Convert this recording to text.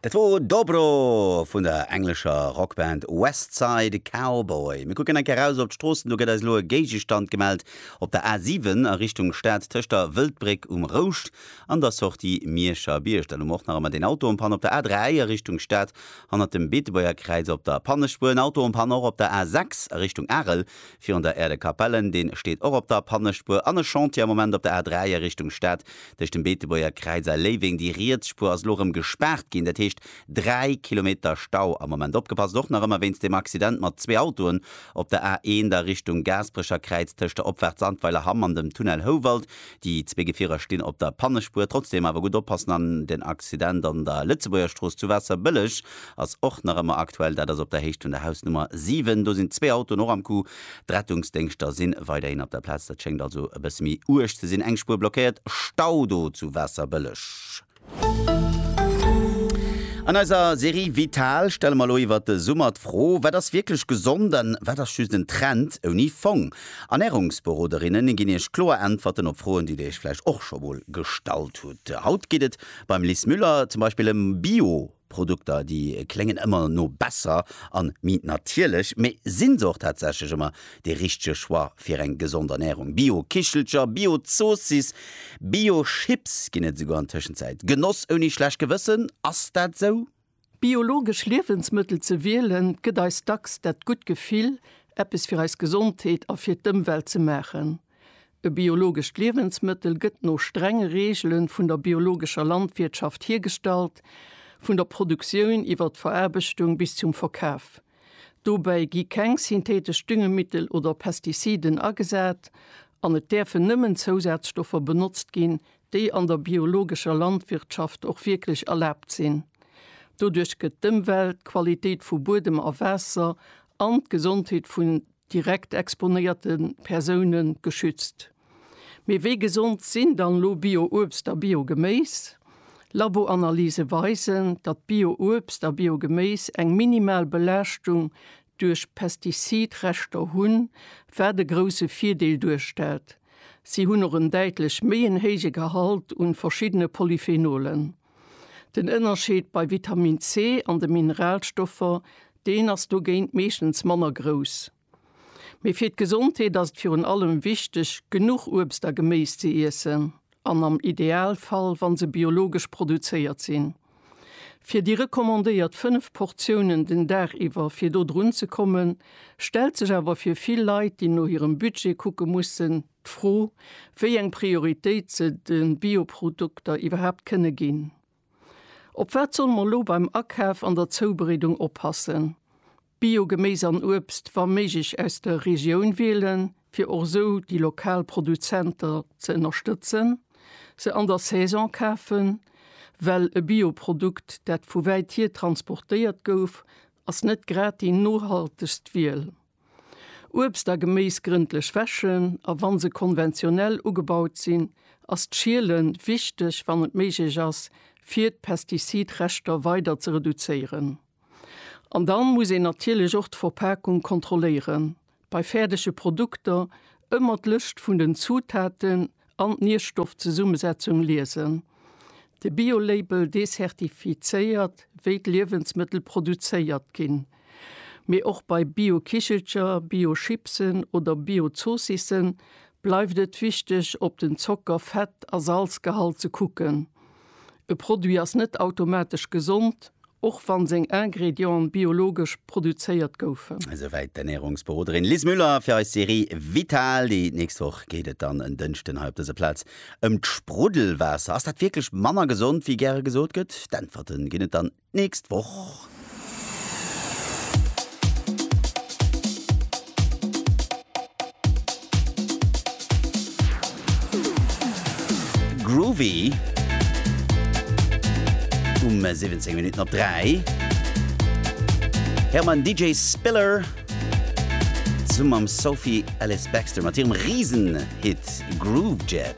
Dat wor Dobro vun der englescher Rockband West Side Cowboy. Mir kucken eng Kéier raus op d'Stroossen. Do gëtt eis elo e Géigestand gemellt op der A7 a Richtung Stad tëscht der Wëldbréck um Rouscht an der Sortie Miescherbierg. Dann hu mer och nach ëmmer deen Auto en panne op der A3 a Richtung Stad hannert dem Beetebuerger Kräiz. Op der Pannespuer en Auto en panne och op der A6 a Richtung Arel. Virun der Aire de Capellen, deen steet och op der Pannespuer, an e Chantier am Moment op der A3 a Richtung Stad tëscht dem Beetebuerger Kräiz a Léiweng. Déi riets Spuer ass elo erëm gespaart ginn, dat heescht 3 Kilometer Stau am Moment. Opgepasst och nach ëmmer wéinst dem Accident mat zwee Autoen op der A1 a Richtung Gaasperecher Kräiz tëscht der Opfahrt Sandweiler Hamm an dem Tunnel Houwald. Déi zwee Gefierer stinn op der Pannespuer. Trotzdeem awer gutt oppassen an den Accident an der Lëtzebuergerstrooss zu Waasserbëlleg ass och nach ëmmer aktuell. Dat ass op der Héicht vun der Hausnummer 7. Do sinn zwee Autoen och am Coup. D'Rettungsdéngschter si weiderhin op der Plaz. Dat schéngt also e bësse méi uerg ze sinn. Eng Spuer blockéiert, Stau do zu Waasserbëlleg. An eiser Serie Vital stelle mer elo iwwert de Summer d'Fro, Wat ass wierklech gesond an wat ass just en Trend ouni Fong? Ernärungsberoderinne ginn Iech kloer Äntwerten op Froen, déi Dir Iech vläicht och scho mol gestallt hutt. Haut geet et beim Lis Müller zum Beispill ëm Bio. Produkter, déi kléngen ëmmer no besser a mi natierlech, mee sinn se och tatsächlech ëmmer dee richtege Choix fir eng gesond Ernärung? Bio-Kichelcher, Bio-Zoossiss, Bio-Chips ginn et esouguer an Tëschenzäit. Genoss ouni schlecht Gewëssen, ass dat esou? Biologesch Liewensmëttel ze wielen, gëtt eis dacks dat gutt Gefill, eppes fir eis Gesondheet a fir d'Ëmwelt ze maachen. E biologescht Liewensmëttel gëtt no strenge Reegele vun der biologescher Landwirtschaft hiergestallt, vun der Produktioun iwwer d'Veraarbechtung bis zum Verkaf. Dobäi gi keng syntheetesch Düngemittel oder Pestiziden agesat an et däerfen nëmmen Zousazstoffer benotzt ginn, déi an der biologescher Landwirtschaft och wierklech erlaabt sinn. Doduerch gëtt d'Ëmwelt, d'Qualitéit vu Buedem a Waasser an d'Gesondheet vun direkt exponéierte Persoune geschützt. Mee wéi gesond sinn dann elo Bio-Uebst a Bio-Geméis? Laboanalyse weisen, datt Bio-Uebst a Bio-Geméis eng minimal Belaaschtung duerch Pestizid-Reschter hunn, wat e grousse Virdeel duerstellt. Si hunn och en däitlech méi en héije Gehalt un verschiddene Polyphenolen. Den Ënnerscheed bei Vitamin C an de Mineralstoffer, deen ass dogéint meeschtens manner grouss. Mee fir d'Gesondheet ass et virun allem wichteg, genuch Uebst a Geméis ze iessen an am Idealfall, wa se biologesch produzéiert sinn. Fir déi recommandéiert 5 Portiounen den Dag iwwer fir do drunzekommen, stellt sech awer fir vill Leit, déi no hirem Budget kucke mussen, D'Fro, wéi eng Prioritéit se de Bioprodukter iwwerhaapt kënne ginn. Op wat solle mer elo beim Akaf an der Zoubereedung oppassen? Bio-Geméis an Uebst wa méiglech aus der Regioun wielen, fir och esou déi lokal Produzenter ze ënnerstëtzen, se an der Saison kafen, well e Bioprodukt, dat vu wäit hier transportéiert gouf, ass net grad déi nohaltegst Wiel. Uebst a Geméis grëndlech wäschen a wann se konventionell ugebaut sinn, ass d'Schiele wichteg, wann et méiglech ass, fir d'Pestizidreschter weider ze reduzéieren. An dann muss een natierlech och d'Verpakung kontrolléieren. Bei fäerdege Produkter ëmmer d'Lëscht vun den Zutaten an d'Nierstoffzesummesetzung liesen. De Bio-Label decertifizéiert wéi d'Liewensmëttel produzéiert ginn. Mee och bei Bio-Kichelcher, Bio-Chipsen oder Bio-Zoossissen bleift et wichteg, op den Zocker-, Fett a Salzgehalt ze kucken. E Produit ass net automatesch gesond, och wann seng Ingredienten biologesch produzéiert goufen. Esouwäit d'Ernärungsberoderin Liz Müller fir eis Serie Vital. Déi nächst Woch geet et dann en Dënschden hei op dëser Plaz ëm d'Spruddelwaasser. Ass dat wierklech manner gesond, wéi gäre gesot gëtt? D'Äntwerte ginn et dann nächst Woch. Groovy um 17 Minuten op 3 Här man DJ Spiller zum am Sophie Alice Baxter mat hirem Riesen-Hit Groove Jet.